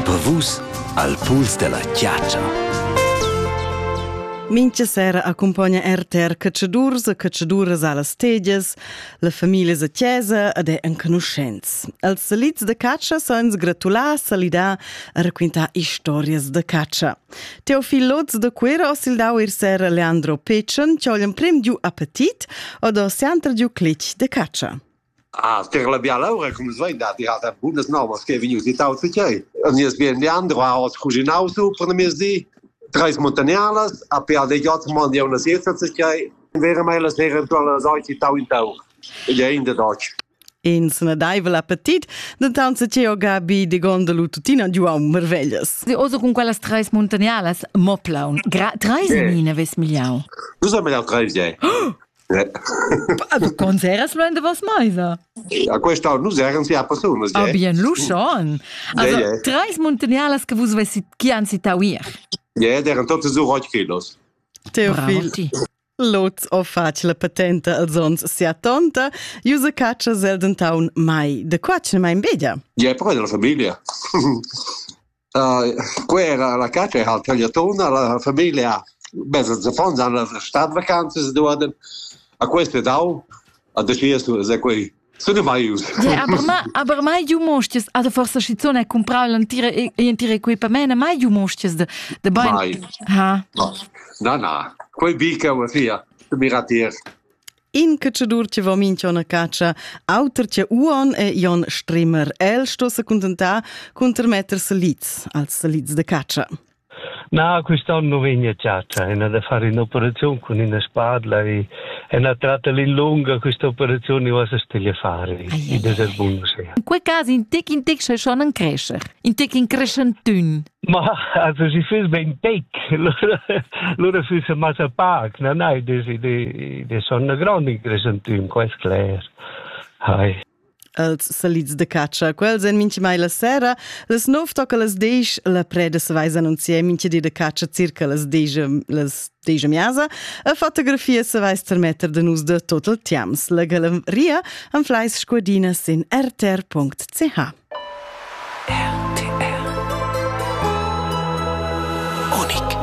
Per vus al puls della chiatscha. Mincha sera accompagna RTR Cacciadurs e Cacciaduras allas tegias, la familia a chiesa ed è enconuschents. Els salits de caccia san gratular, salidar e raquintar historias de caccia. Teofil Lotz de Cuera osildau ir sera Leandro Pecen, che ho l'emprim giu appetit od ho sempre giu clich de caccia. Ah, tier la biala ura cum es vain dat dirata bunas novas che vegnius itaus e tgei. A nies bien Leandro ha oz cuginau su per mezdi treis montagnardas, a pe de jot man ja una siesta se tgei. Vera mai la sera eventual la sauci tau in tau. Ed è in de Deutsch. In snadaivel appetit, dentant se Teo Gabi de Gondelu tuttina giuau merveglias. Oso con quellas treis montagnalas, mo plaun. Gra treis yeah. mine ves migliau. Nus haben ja treis, yeah. Ah, du conseras lo in de vos meisa? A questa nus eran sia personas. Ah, bien, lu schon. Also, treis muntagnarlas che vus vessit chi han citau ir. Ja, eran totes so rot kilos. Teofil. Lots o faci la patenta als ons sia tonta, iusa caccia zel dentaun mai. De qua ce mai in bedia? Ja, però è della familia. Quei era la catscha e ha tagliatona, la famiglia, beh, ils affons han stat vacanzas duaden. A quest e dau, a decidias tu, se quei sun mai ius. aber ma, aber mai giu mostias, also forse schizun hai comprau l'entira entira equipament, mai giu mostias de, de bein. Mai. Ha. No. Na, na. Quei bica va sia, tu miratiers. In cacciadur che va minch'on a caccia, auter che Uon e Jon Strimmer. El sto se contentar cun termetter salids als salids de caccia. Na, quest'anno non vegna a caccia, è da fare un'operazione con una spadla e è una tratta lunga, questa operazione va a fare, e das è buono sia. In quei caso in tec in tec se schon cresce, in tec in crescentun. Ma also sie fürs ben tec. Lura fürs massa pac, na nai, de de de sonna grand in crescentüm, quest cler. Hai. Els salids de catscha, quels en minchi mai la sera, les nov toca las desch, la preda se vais annunzier minchi di de catscha circa las desch, las Tegia miasa a fotografia se vais termetter de nus de total tiams. La galleria am fleis scuadina sin rtr.ch. RTR. Unik.